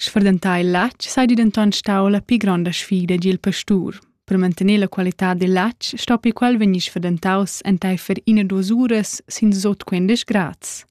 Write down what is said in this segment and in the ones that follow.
Sfurdentar il latg seigi denton stau la pli gronda sfida egl pastur. Per mantener la qualitad dil latg stoppi quel vegnir sfurdentaus enteifer ina duas uras sin sut quindisch grads.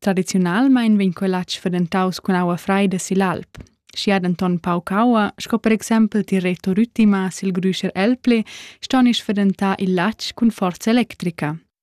Tradiziunalmein vegn quel latg sfurdentaus cun aua freida sigl alp. Schi ha denton pauc aua, sco per exempel Tireto Rüttima sil Grüscher Elpli, ston ins sfurdentar il latg cun forza electrica.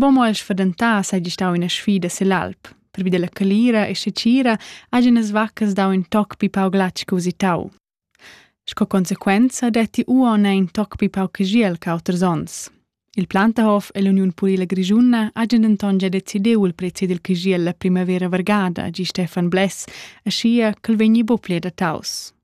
Bon mo el sfadentà seigi stau ina sfida sill'alp. Pervi dalla calira e secira hagen las vaccas dau in toc pi pau glatsch che usitau. Sco consequenza detti uon in toc pi pau cagiel che auters onns. Il Plantahof e l'Uniun Purila Grischuna hagen denton già decidiu il prezzi dil cagiel la primavera vargada, gi Stefan Bless, aschia ch'el vegni buc pli adattaus.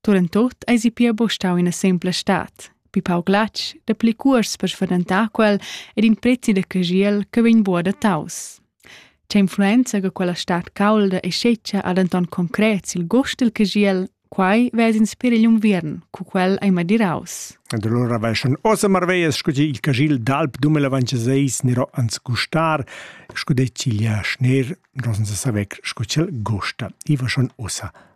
Turentort eisi pia buca stau ina sempla stad. Bi pauc glatsch, dapli cuors per sfadentar quel ed in prezi da cagiel che vegn buca dataus. Che influenza che quella stad caulda e scetga ha denton concret sil gust dil cagiel, quai vez inspir igl unviern, cu quel ei madiraus. Ed allora vai schon ossa marveias scuti il cagil d'alp dumelavanciseis nero ans gustar, scude ciglia schner, rosen sa saver scu cel gusta. I va schon ossa